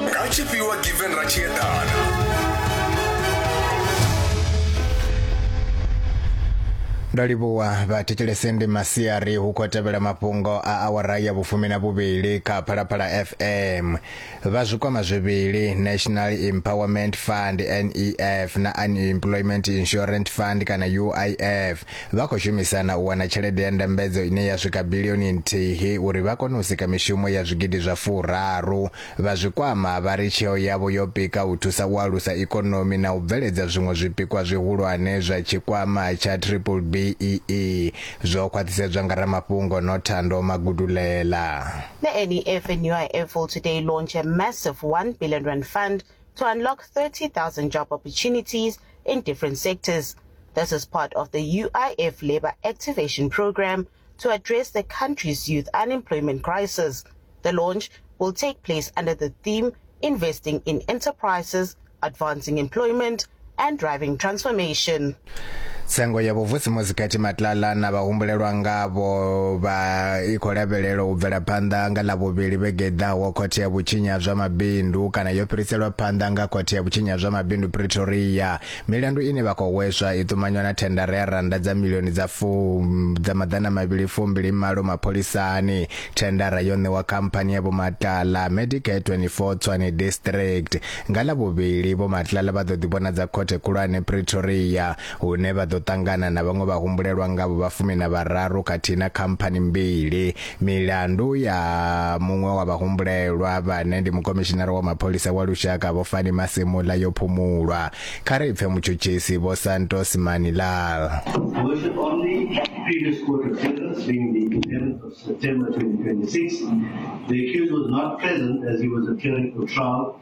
nga tshifhiwa given ra tshi ndo livhuwa vhathetshelesende masiari hu khou tevhela mafhungo a awara ya vhufumi na vhuvhili kha phalaphala fm vha zwikwama zwivhili national empowerment fund nef na unemployment insurance fund kana uif vha khou shumisana u wana tshelede ya ndambedzo ine ya swika bilioni nthihi uri vha kone u sika mishumo ya zwigidi zwa furaru Vha Zwikwama vha ri tsheo yavho yo pika u thusa u alusa ikonomi na u bveledza zwiṅwe zwipikwa zwihulwane zwa tshikwama tsha Triple-BEE zwo khwaṱhisedzwa nga ramafhungo Nothando Magudulela. The NEF and UIF will today launch a massive one billion rand fund to unlock 30,000 job opportunities in different sectors. This is part of the UIF Labour Activation Programme to address the country's youth unemployment crisis. The launch will take place under the theme Investing in Enterprises, Advancing Employment, and Driving Transformation. tsengo ya vhuvusimusi kati matlala na vhahumbulelwa ngavho vha i khou lavhelelwa u bvela phanḓa nga ḽa vhuvhili vhege ḓaho khothe ya vhutshinya zwa mabindu kana yo fhiriselwa phanḓa nga khothe ya vhutshinya zwa mabindu pretoria Milandu ine vha khou hweswa i ṱumanywa na thendara ya rannda dza milioni dza fu dza maḓana mavhili fumbili malo mapholisani. Thendara yo ṋewa khamphani ya Vho Matlala, Medicare 24 Tshwane District. Nga Ḽavhuvhili, Vho Matlala vha ḓo ḓivhonadza Khothe Khulwane Pretoria, hune vha ḓo ṱangana na vhaṅwe vhahumbulelwa ngavho vha fumi na vhararu khathihi na khamphani mbili. Milandu ya muṅwe wa vhahumbulelwa vhane ndi mukomishinara wa mapholisa wa lushaka Vho Fani Masemola yo phumulwa. Kha ri pfe mutshutshisi Vho Santos Manilal. Version on the previous court appearance being the 11th of September 2026, the accused was not present as he was appearing for trial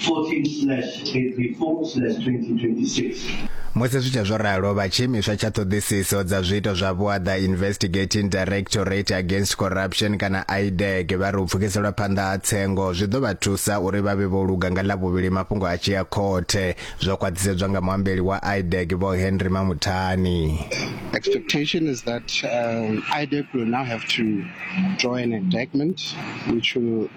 14/24/2026. Musi zwi tshe zwo ralo, vha Tshiimiswa tsha Ṱhoḓisiso dza Zwiito zwa Vhuaḓa Investigating Directorate Against Corruption kana IDAC vha ri u pfukiselwa phanḓa ha tsengo zwi ḓo vha thusa uri vha vhe vho luga nga Ḽavhuvhili mafhungo a tshi ya khothe, zwo khwaṱhisedzwa nga muambeli wa IDAC Vho Henry Mamuthani. expectation is that um, IDEC will now have to draw an indictment which will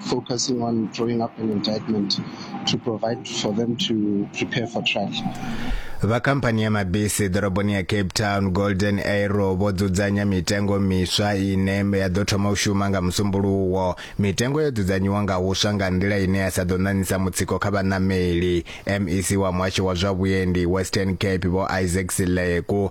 focusing on drawing up an indictment to provide for them to prepare for trial. vha khamphani ya mabisi ḓoroboni ya cape town golden arrow vho dzudzanya mitengo miswa ine ya ḓo thoma u shuma nga musumbuluwo mitengo yo dzudzanyiwa nga huswa nga nḓila ine ya sa ḓo ṋaṋisa mutsiko kha vhaṋameli mec wa muhasho wa zwa vhuendi western cape vho isaac sileku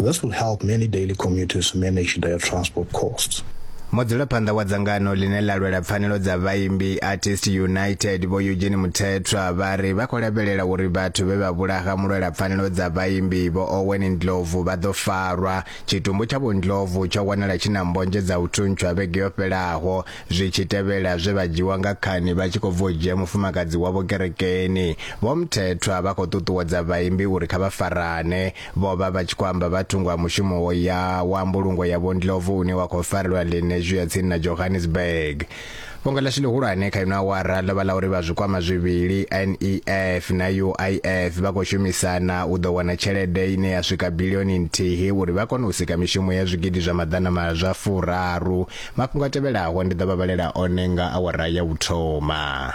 This will help many daily commuters manage their transport costs. Mudzulaphanḓa wa dzangano ḽine ḽa lwela pfanelo dza vhaimbi Artist United Vho Eugene Muthethwa vha ri vha khou lavhelela uri vhathu vhe vha vhulaha mulwela pfanelo dza vhaimbi Vho Owen Ndlovu vha ḓo farwa. Tshitumbu tsha Vho Ndlovu tsho wanala tshi na mbodzhe dza u thuntsha vhege yo fhelaho zwi tshi tevhela zwe vha dzhiwa nga khani vha tshi khou bva u dzhia mufumakadzi wavho kerekeni. Vho Mthethwa vha khou ṱuṱuwedza vhaimbi uri kha vha farane. Vho vha vha tshi khou amba vha thungo ha mushumo wo ya wa mbulungo ya Vho Ndlovu une wa khou farelwa Lenasia ya tsini na Johannesburg. Fhungo ḽashu ḽihulwane kha ino awara ḽo vha ḽa uri vha zwikwama zwivhili NEF na UIF vha khou shumisana u ḓo wana tshelede ine ya swika bilioni nthihi uri vha kone u sika mishumo ya zwigidi zwa maḓana ma zwa furaru. Mafhungo a tevhelaho ndi ḓo vha vhalela one nga awara ya u thoma.